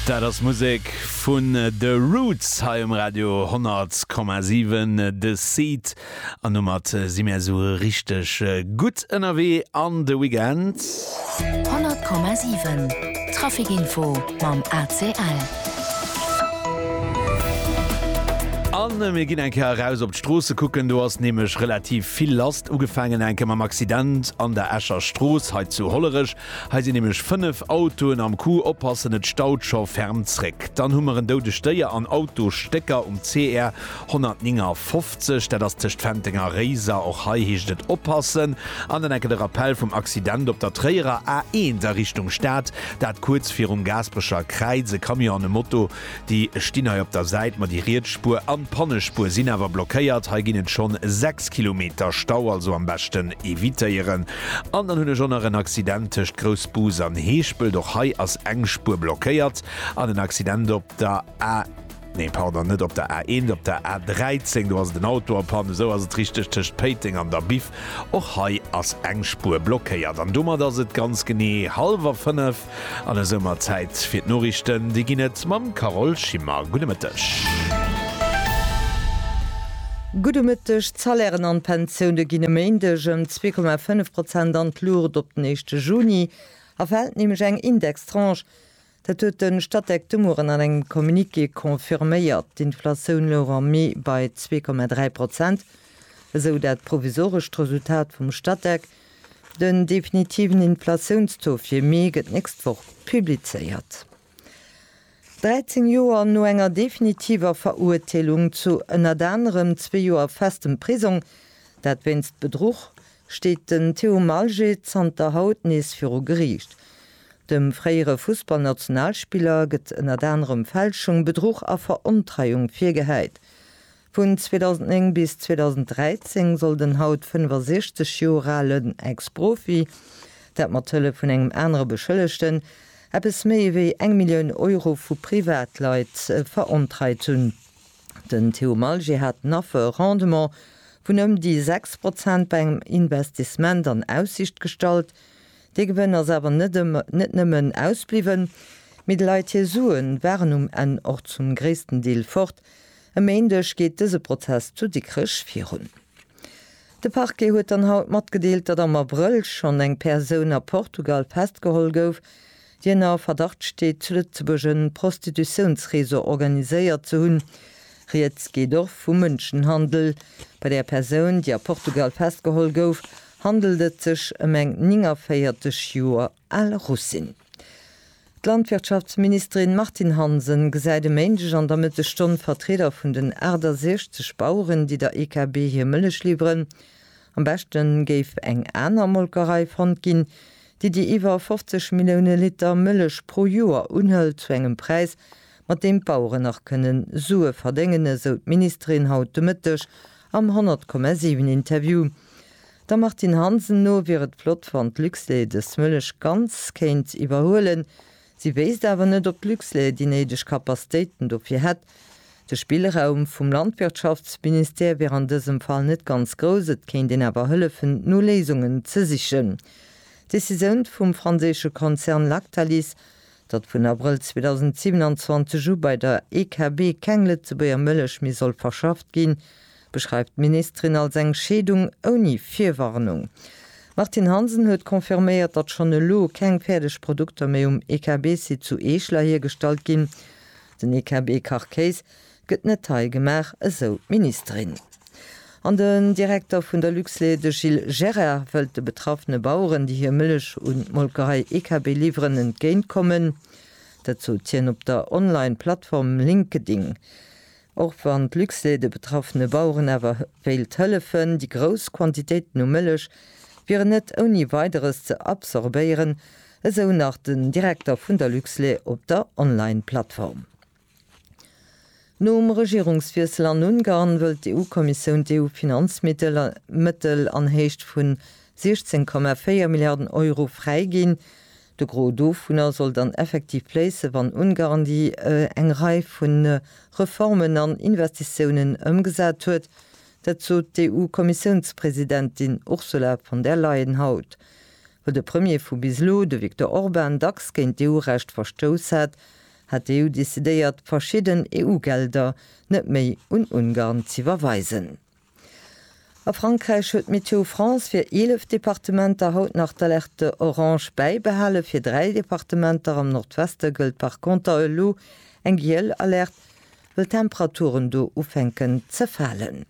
Dat ass Musek vun The Roots hei um Radio 100,7 The Seed an domat si mir esou richteg gutt ënnerwee an de Weekend. 100,7 Trafikinfo mam ACL. A mir ginn eng Kéier eraus op d'Stroosse kucken, do ass nämlech relativ vill lass. Ugefaangen enke mam Accident an der Escher Strooss hei zu Hollerech, Hei sinn nämlech 5 Autoen am Coup, oppassen et staut scho ferm zréck. Dann hu mer en doudegt Déier an Autosstécker um CR 159, dat ass tëscht Fenteng a Réiser. Och hei heescht et oppassen. An dann enke de Rappell vum Accident op der Tréierer A1 a Richtung Stad, dat kuerz virum Gaasperecher Kräiz, e Camion an e Moto Déi stinn hei op der Säit, ma déi riets Spuer an d'Pannespuer sinn awer blockéiert. Hei ginn et schonn 6 Kilometer Stau, also am beschten evitéieren. An dann hunn ech och nach en Accident tëscht Groussbus an Heeschpelt. Och hei ass eng Spuer blockéiert. An en Accident op der A, nee pardon, net op der A1, op der A13, do ass et en Auto a Panne, esou ass et richteg, tëscht Péiteng an der Biff. Och hei ass eng Spuer blockéiert. An domat ass et ganz genee hallwer fënnef. An esou mer Zäit fir d'Noriichten. Déi ginn et mam Carole Schimmer. Gudde Mëtteg. Gudde Mëtteg. D'Salairen an d'Pensioune ginn e Méindeg ëm 2,5 Prozent an d'Luucht. Op den éischte Juni erfält nämlech eng Indextranche. Dat huet de Statec de Mueren an engem Communiqué confirméiert. D'Inflatioun louch am Mee bei 2,3 Prozent, esou dat provisorescht Resultat vum Statec. Den definitiven Inflatiounstaux fir Mee gëtt d'nächst Woch publizéiert. 13 Joer no enger definitiver Verurteelung zu ënnert anerem zwee Joer festem Prisong, dat wéinst Bedruch, steet den Théo Malgé zanter haut nees viru Geriicht. Dem fréiere Fussballnationalspiller gëtt ënnert anerem Fälschung, Bedruch a Verontreiung virgehäit. Vun 2009 bis 2013 soll den haut 65 Joer alen Ex-Profi, dat mat Hëllef vun engem anere Beschëllegten, eppes méi wéi eng Millioun Euro vu Privatleit verontreit hunn. Den Theo Malger hat den Affer e Rendement vun ëm déi 6 Prozent bei engem Investissement an Aussicht gestallt. Dee Gewënn ass awer net net nëmmen ausbliwwen, mee de Leit hir Sue waren um Enn och zum gréissten Deel fort, E Méindeg geet dëse Prozess zu Dikrech virun. De Parquet huet dann haut matgedeelt, datt am Abrëll schonn eng Persoun a Portugal festgeholl gouf, déi ënner Verdacht steet, zu Lëtzebuerg e Prostitutiounsreseau organiséiert ze hunn. Rieds geet och vu Mënschenhandel. Bei der Persoun, déi a Portugal festgeholl gouf, handelt et sech ëm eng 49 Joer al Russin. D'Landwirtschaftsministerin Martine Hansen gesäit e Méindeg an der Mëttesstonn Vertrieder vun den 68 Baueren, déi der EKB hir Mëllech liwweren. Am beschte géif eng aner Molkerei fonnt ginn, déi déi iwwer 50 Millioune Liter Mëllech pro Joer unhëlt, zu engem Präis, mat deem d'Baueren nach kënne Sue verdéngen, esou d'Ministerin haut de Mëtteg am 100,7 Interview. Der Martine Hansen no wier et flott wann d'Luxlait dës Mëllech ganz kéint iwwerhuelen. Si wéisst awer net ob d'Luxlait déi néideg Kapastéiten dofir hätt. De Spillraum vum Landwirtschaftsministère wier an dësem Fall net ganz grouss, et kéint een awer hëllefen no Léisungen ze sichen. D'Decisioun vum franséische Konzern Lactalis, datt vun Abrëll 2027 u bei der EKB keng Lëtzebuerger Mëllech méi soll verschafft ginn, beschreift d'Ministerin als eng Scheedung ouni Virwarnung. D'Martine Hansen huet confirméiert, datt schonn elo keng fäerdeg Produkter méi um EKB-Site zu Eeschler hiergestallt ginn. Den EKB-Kachkéis gëtt net hei gemaach, esou d'Ministerin. An den Direkter vun der Luxlait, de Gilles Gerrer, wëllt de betraffene Baueren, déi hir Mëllech un d'Molkerei EKB liwweren, entgéintkommen. Dat sot hien op der Online-Plattform LinkedIn. Och wann d'Luxlait de betraffene Baueren awer wéilt hëllefen, déi grouss Quantitéiten u Mëllech wieren net ouni Weideres ze absorbéieren, esou nach den Direkter vun der Luxlait op der Online-Plattform. Nom Regierungswiessel an Ungarn wëllt d'EU-Kommissioun d'EU-Finanzmittel Mëttel an Héicht vun 16,4 Milliarden Euro fräiginn. De Gros dovunner soll dann effektiv fléissen, wann Ungarn déi eng Rei vu Reformen an Investitiounen ëmgesat huet. Dat sot d'EU-Kommissiounspresidentin Ursula von der Leyen haut. Wou de Premier vu bis elo, de Viktor Orban, dacks géint d'EU-Recht verstouss hat, hat d'EU decidéiert, verschidden EU-Gelder net méi un Ungarn z'iwwerweisen. A Frankräich huet Météo France fir 11 Departementer haut nach d'Alerte orange bäibehalen. Fir dräi Departementer am Nordweste gëllt par Konter elo eng giel Alerte, wëll d'Temperaturen do ufänken ze falen.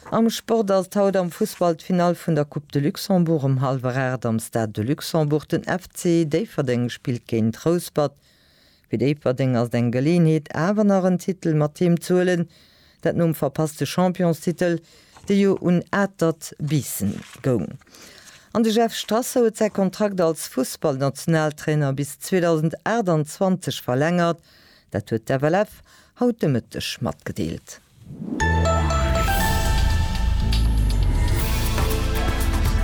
Am Sport ass et haut am Fussball d'Finall vun der Coupe de Luxembourg. Um hallwer 8 am Stade de Luxembourg. Den FC Déifferdeng spillt géint Rouspert. Fir Déifferdeng ass et eng Geleeënheet awer nach en Titel mat heem z'huelen, dat nom verpasste Championstitel, dee jo un Atert Biissen goung. An de Jeff Strasser huet säi Kontrakt als Fussballnationaltrainer bis 2028 verlängert, dat huet d'FLF haut de Mëtteg matgedeelt.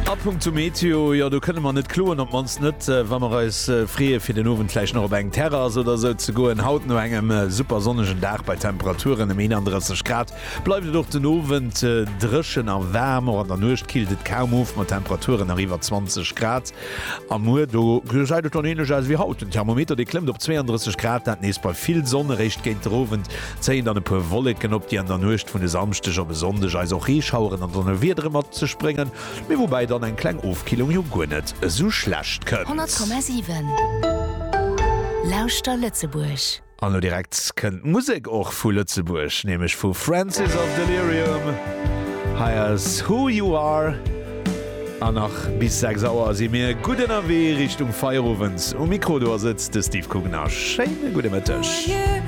A Punkt zum Meteo, jo do kënne mer net kloen, op d'mannst net wa mer eis freeë fir den Owend vläicht nach op eng Terrass oder esou ze goen. Haut no engem super sonnegen Dag bei Temperaturen ëm 31 Grad bleift et och den Owend dréchen a waarm. Och an der Nuecht killt et kaum of mat Temperaturen nach iwwer 20 Grad. A muer do gesäit et dann änlech aus wéi haut, den Thermometer dee klëmmt op 32 Grad, dat nees bei vill Sonn. Eréischt géint der Owend zéien dann e puer Wolleken op, déi an der Nuecht vun e Samschdeg op e Sonndeg eis och Reeschaueren an Donnerwiedere mat sech bréngen, mee woubäi dann eng kleng Ofkillung jo guer net esou schlecht kënnt. 100,7 Lauschter Lëtzebuerg! An elo direkt kënnt d'Musek och vu Lëtzebuerg, nämlech vu Francis of Delirium. Hei ass Who You Are. An nach bis 6 Auer si mir gutt ënnerwee Richtung Feierowend. Um Mikro do ass et de Steve Kugner. Schéine gudde Mëtteg.